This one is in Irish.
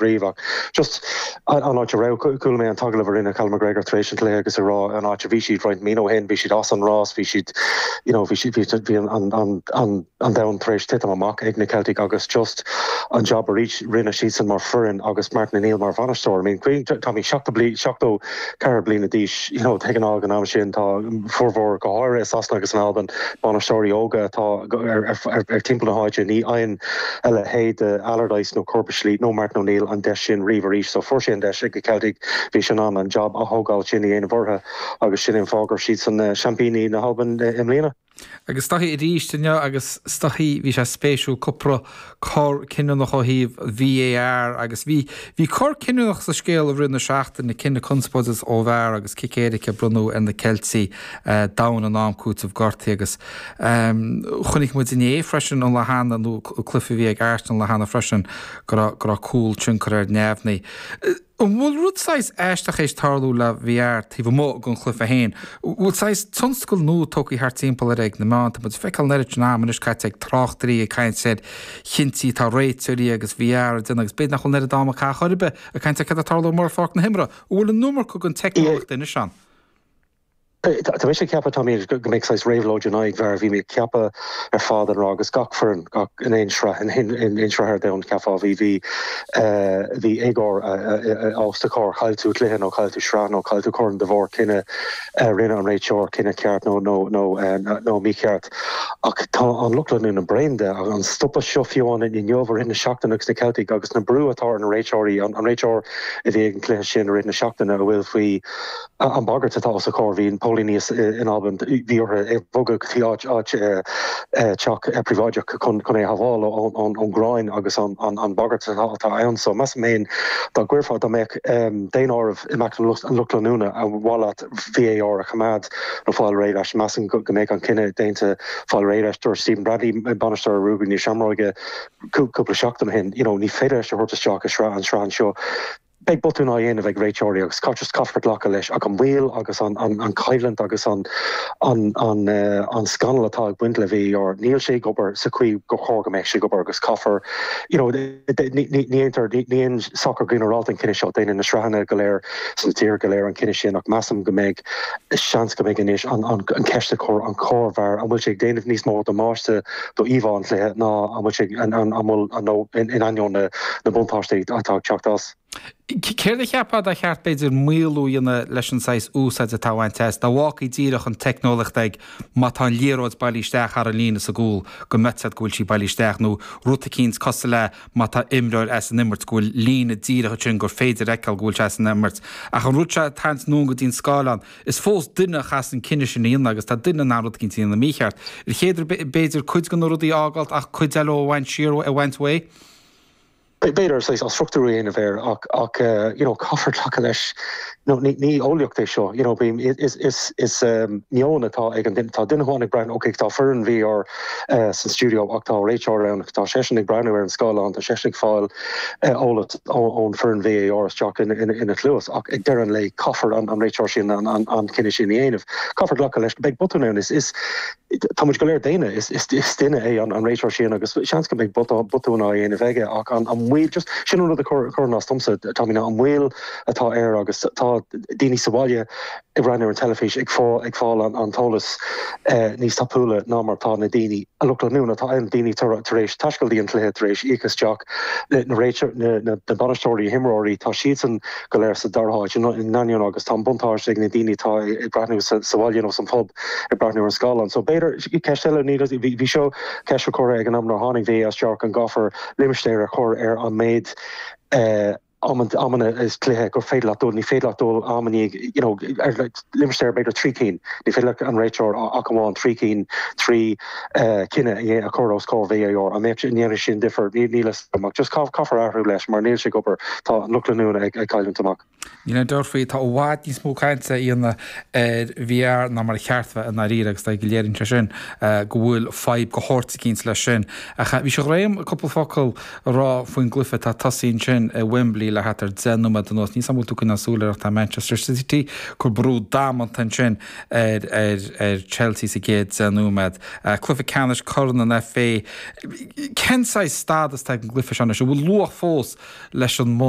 bhí, ach just an áit a raibh. Chuala mé an t-agallamh a rinne Callum McGregor tar éis an cluiche agus ag rá an áit a bhí siad roinnt míonna ó shin, bhí siad as an rás, bhí siad, you know, bhí siad, bhí an domhan tar éis titim amach ag na Ceiltigh agus just an jab atá, rinne siadsan mar foireann agus Martin O'Neill mar bhainisteoir. I mean, cén, tá sé seachtó bliain, seachtó. ceithre bliana d'aois. Ag an am am sin tá formhór, go háirithe i Sasana agus in Albain, bainisteoirí óga atá ar timpeall na háite. Ní fhaigheann a leithéid de Allardyce nó Curbishley nó Martin O'Neill an deis sin riamh arís. So fuair sé an deis ag na Ceiltigh. Bhí sé in ann an jab a thógáil sin a dhéanamh orthu agus sin an fáth go raibh siad ina seaimpíní na hAlban i mbliana. Agus Scotty arís inniu agus Scotty, bhí sé spéisiúil, cúpla cor cinniúnach ó thaobh VAR agus bhí bhí cor cinniúnach sa scéal i rith na seachtaine, cinneadh conspóideach ó VAR agus cic éirice bronnta ar na Ceiltigh domhain in am cúiteamh gortaithe agus chonaic muid inné freisin an lá cheana nó cluiche a bhí ag Arsenal lá cheana freisin go raibh go raibh cúl curtha ar neamhní. An bhfuil rud saghas aisteach théis tarlú le VAR taobh amuigh den chluiche féin? Bhfuil saghas tionscal nua tógtha thart timpeall air ag na meáin? Tá muid ag feiceáil an oiread sin ama anois caite ag tráchtairí ag caint ar chinntí atá réiteoirí agus VAR ag déanamh agus b'fhéidir nach bhfuil an oiread ama caite a chor ar bith ag caint ar céard atá ag tarlú ar pháirc na himeartha. An bhfuil an iomarca den teicneolaíocht anois ann? Tá mise ag ceapadh, Tommy, go mbeidh saghas réabhlóid in aghaidh VAR, bhí mé ag ceapadh ar fad an ráth agus gach foireann gach in aon sraith in aon sraith ar domhan cheapfá bhí bhí bhí éagóir más tar chaill tú cluiche nó chaill tú sraith nó chaill tú corn de bharr cinneadh a rinne an réiteoir cinneadh ceart nó nó nó nó mícheart ach tá an lucht leanúna bréan de an stopadh seo fiú ann inniu i rith na seachtaine agus na Ceiltigh agus an brú atá ar na réiteoirí an réiteoir a bhí ag an cluiche sin i rith na seachtaine a bhfuil faoi An bagairt atá os a chomhair, bhí na póilíní in Albain, bhí orthu é bhogadh go dtí áit, áit eh, teach eh, príobháideach chun, chun é shabháil ón, ón, ón, ón gráin agus an, an, an bagairt atá, atá ann. So, measaim féin, dá gcuirfeá, dá mbeadh em, daonáireamh i measc an lucht, an lucht leanúna ar mhaith leat VAR a choimeád nó fáil réidh leis, measaim go, go mbeadh an cinneadh déanta fáil réidh leis. Dúirt Stephen Bradley, eh, bainisteoir Ruagairí na Seamróige, cú, cúpla seachtain ó shin, you know, ní féidir linn é a thabhairt isteach i sraith, an sraith anseo, Beidh botúin á dhéanamh ag réiteoirí agus caitear caithfear glacadh leis ach an mhoill agus an choimhlint agus an scannal atá ag baint le VAR níl sé ag obair sa chaoi gur chóir go mbeadh sé ag obair agus caithfear you know ní dhéantar ní dhéanann sacar ginearálta an cinneadh seo déanann na sraitheanna go léir sna tíortha go léir an cinneadh sin ach measaim go mbeidh seans go mbeidh anois an ceist á cur an cóir VAR an bhfuil sé ag déanamh níos mó damáiste d'íomhá an chluiche ná an bhfuil sé an an bhfuil an nó in in ainneoin na na buntáistí atá ag teacht as. Céard a cheapfá dá cheart b'fhéidir maolú a dhéanamh leis an saghas úsáid atá á bhaint as, dá bhfágfaí díreach an teicneolaíocht ag má tá an liathróid bailí isteach thar an líne sa gcúl go mbeifeá in ann go bhfuil sí bailí isteach nó rud eicínt cosúil le má tá imreoir as an imirt go bhfuil líne díreach ansin gur féidir a fheiceáil go bhfuil sé as an imirt ach an rud seo a tharraingt anonn go dtí an scáileán Is fós duine a chaithfeas an cinneadh sin a dhéanamh agus tá duine in ann rud eicínt a dhéanamh mícheart. Ar cheart b'fhéidir cuid de na rudaí a fhágáilt ach cuid eile a bhaint siar a bhaint uaidh. B'fhéidir saghas athstruchtúrú a dhéanamh air ach you know caithfear glacadh leis ní eolaíocht é seo you know is meon atá ag an duine. Tá duine amháin ag breathnú ok tá foireann VAR san stiúideo ach tá réiteoir ann, tá seisean ag breathnú ar an scáileán, tá seisean ag fáil eolas ón foireann VAR isteach ina chluas ach ag deireadh an lae caithfidh an réiteoir sin an cinneadh sin a dhéanamh. Caithfear glacadh leis go mbeidh botún ann. Tá muid go léir daonna, is duine é an réiteoir sin agus seans go mbeidh botún á dhéanamh aige ach an baol, just sin an rud a chuireann as domsa Tommy, ná an baol atá air agus tá daoine sa bhaile, ag breathnú ar an teilifís ag fáil an t-eolas níos tapúla ná mar atá na daoine an lucht leanúna atá ann, daoine tar éis taisteal go dtí an cluiche, tar éis íoc isteach na bainisteoirí, imreoirí, tá siadsan go léir sa dara háit in ainneoin agus tá an buntáiste ag na daoine atá ag breathnú sa bhaile nó san phub ag breathnú ar an scáileán. So b'fhéidir ceist eile níl a fhios agam, bhí seo ceist a curtha ag an am a tháinig VAR isteach, an gcaithfear limistéar a chur ar an méid amanna i gcluiche gur féidir leat dul, ní féidir leat dul am i ndiaidh you know ar like limistéar ar b'fhéidir trí cinn, ní féidir leat an réiteoir ach amháin trí cinn trí eh, chinneadh a dhé- a chur os comhair VAR an mbeadh sé- an ndéanfadh sin difear? Ní níl a fhios agam ach just cá- caithfear athrú leis mar níl sé ag obair, tá an lucht leanúna ag ag cailliúint amach. Níl aon dabht faoi, tá i bhfad níos mó cainte á dhéanamh ar VAR ná mar ba cheart a bheith i ndáiríre agus ar ndóigh léiríonn sé sin eh, go bhfuil fadhb áirithe eicínt leis sin. Ach eh, is fiú dúinn cúpla focal a rá faoin gcluiche atá tosaithe ansin i Wembley le thart ar 10 nóiméad anuas. Níl a fhios agam an bhfuil tú ag coinneáil súil air ach tá Manchester City ag cur brú damanta ansin ar Chelsea sa gcéad deich nóiméad. Cluiche ceannais Corn an FA. Cén saghas stádas atá ag an gcluiche sin anois? An bhfuil luach fós leis an mbua?